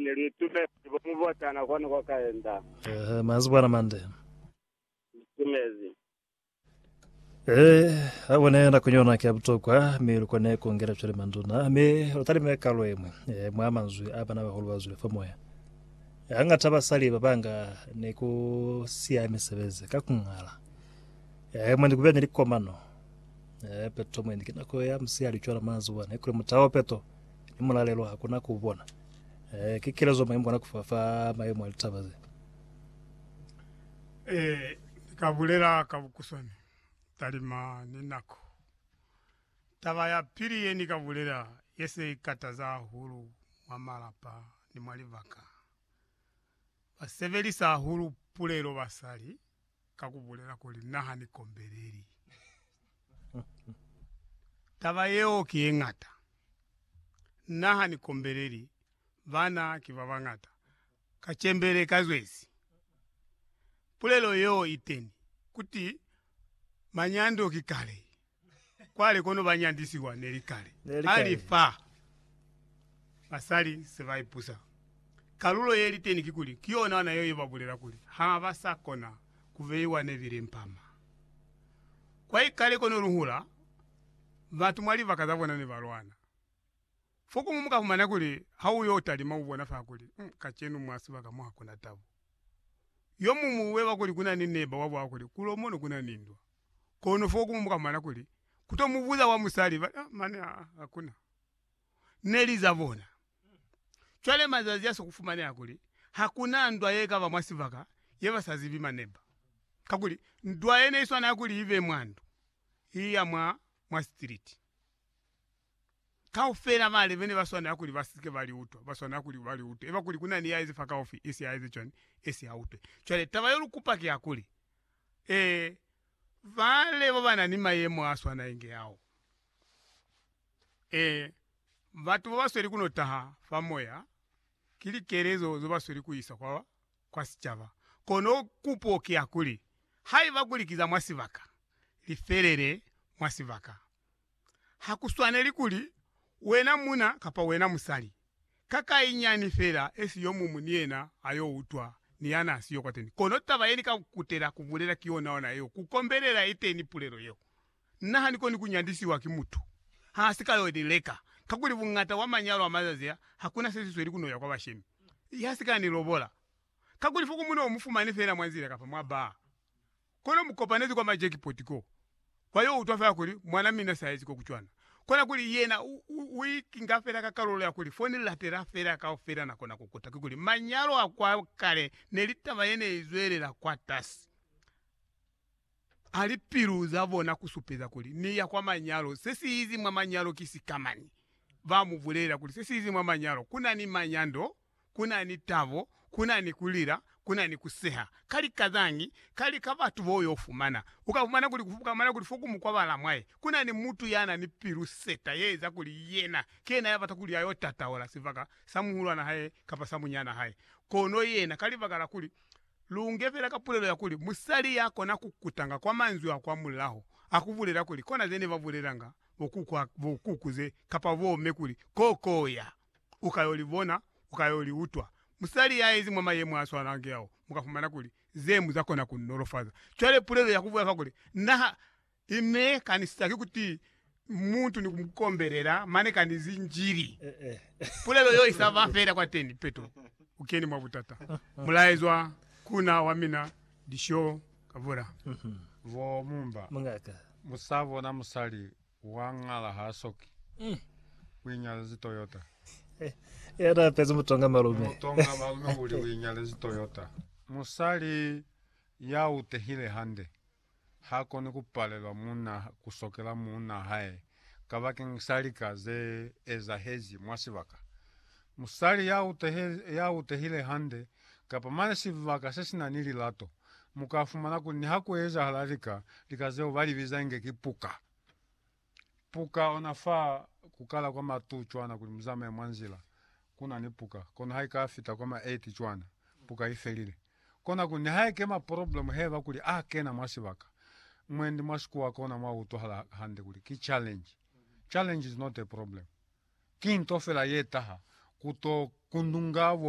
Ne lu itumezi bo mubotana kwani kwa kaenda. Ehe, mazi bwana mande. Itumezi. Ehe, abone na kunyona kia butokwa, mi lukone kongela cwale manduna, mi lutalime kalo emwe, eh, mwa manzwi a bana bahulu ba zwile fa moya. Eh, hangata basali babanga ni ku siya misebezi ka kungala. Eh, mwe ni kuba ni likomano. Eh, peto mwe ni kinako ya musiya licwala mazi bwana, ikuli mutao peto. ni mulalelo ha kuna ku bona. Eh, ki kelezo mai mukona kufa fa maemo a litaba ze. Eh, ka bulela ka bukuswani talima ni nako. Taba ya pili ye ni ka bulela ye se ikataza hahulu mwa malapa ni mwa libaka, ba sebelisa hahulu pulelo basali. ka ku bulela kuli, Na ha ni kombeleli. Taba yeo ki ye ñata. Na ha ni kombeleli. Bana ki ba bañata. Ka cembele ka zwezi. Pulelo yeo iteni, kuti, Manyando ki kale. Kwale kono ba nyandisiwa ne li kale. Ali fa basali se ba ipusa, kalulo ye li teni kikuli, ki yona ona yeo ye ba bulela kuli ha ba sa kona ku beiwa ne bile mpama. Kwa ikale kono lu hula, batu mwa libaka za bona ne ba lwana. Fokumu mu ka fumana kuli ha u yo talima u bona fa kuli, mm, kacenu mwa sibaka mo ha ku na tabo. Yo muñwi u beba kuli ku na ni neba wa bwa kuli, Kulo mono ku na ni ndwa. kono fo ku muka mwana kuli ku to mu buza wa musali ba a mane aa hakuna ne li za bona. Cwale mazazi a si ku fumaneha kuli hakuna ndwa ye kaba mwa sibaka ye ba sa zibi maneba, kakuli ndwa ye ne i swanela kuli ibe mwa ndu, i ya mwa, mwa street. Kaufela ba lebe ne ba swanela kuli ba si ke ba li utwa, ba swanela kuli ba li utwe. Eba kuli ku na ni ya ezi fakaufi, esi a eze cwani? Esi a utwe. Cwale, taba yo lu kupa ki ya kuli, Ee, ba lebo ba na ni mayemo a swana inge ao. Ee, batu bo ba sweli ku no taha fa moya, ki likelezo zo ba sweli ku isa kwa, kwa sicaba. Kono kupo ki ya kuli, Haiba kuli ki za mwa sibaka, li felele mwa sibaka. ha ku swaneli kuli wena muna kapa wena musali, ka kai nyani fela esi yo muñwi ni yena a yo utwa ni ya n'a siyo kwateni. Kono taba ye ni ka ku kutela ku bulela ki yonaona yeo, ku kombelela iteni pulelo yeo. Nna ha ni koni ku nyandisiwa ki mutu ha si ka yo ni leka, kakuli buñata bwa manyalo a mazazi a, ha ku na se si sweli ku no ya kwa bashemi. Ya si ka ni lobola, kakuli fo ku mu no mu fumani fela mwa nzila kapa mwa baa. Kono mu kopanezi kwa ma jackpot ko, ba yo utwa fela kuli mwana mina sa ezi ko ku cwana. Kona kuli yena u ikinga fela ka kalulo ya kuli fo ni latela fela kaufela na kona ku kuta. Kikuli manyalo a kwa kale neli taba ye ne izwelela kwatasi a lipilu za bona ku supeza kuli ni ya kwa manyalo. Se si izi mwa manyalo ki sikamani. Ba mu bulelela kuli se si izi mwa manyalo ku na ni manyando. ku na ni tabo, ku na ni ku lila, ku na ni ku seha. Ka lika zañi? Ka lika batu bo yo fumana. U ka fumana kuli, u ka fumana kuli fo ku mukwa ba la mwaye, ku na ni mutu ya na ni pilu seta ye eza kuli yena ki yena ya bata kuli a yo tataola sibaka sa muhulwana hae kapa sa munyana hae. Kono yena, ka libaka la kuli, lu nge fela ka pulelo ya kuli musali ya kona ku kutanga kwa manzwi a kwa mulaho a ku bulela kuli, Kona ze ne ba bulelanga bo kuku, bo kuku ze, kapa bo me kuli, Ko, ko ya. u ka yo li bona, u ka yo li utwa. Musali ya yezi mwa mayemo a swanange ao, mu ka fumana kuli ze mu za kona ku mu nolofaza. Cwale pulelo ya ku bulela fa kuli, Na ha i me kanisisa ki kuti mutu ni ku mu kombelela, mane ka ni zinjili, pulelo yo i sa ba fela kwateni, peto, u keni mwa butata. Mulaezwa ku na wa mina Dishoo Kavula. Vo mumba, mu sa bona musali Wa ngala ha soki u inyalezi Toyota. Ya na apezi mutonga malume. Mutonga malume uli u inyalezi Toyota. Musali ya utehile hande ha koni ku palelwa muuna ku sokela muuna hae kabakeng sa lika ze ezahezi mwa sibaka. Musali ya utehile hande kapa mane sibaka se si na ni lilato, mu ka fumana kuli niha ku ezahala lika, lika zeo ba li biza inge ki puka. Puka ona fa ku kala kwa ma 2 cwana kuli mu zamaye mwa nzila ku na ni puka, kono ha i ka fita kwa ma 8 cwana, puka i felile. Kona kuli niha ekema poroblemu heba kuli a kena mwa sibaka, mwendi mwa sikuwa kona mwa utwahala hande kuli ki challenge. Challenge is not a problem. Ki nto fela ye taha ku to kundunga bo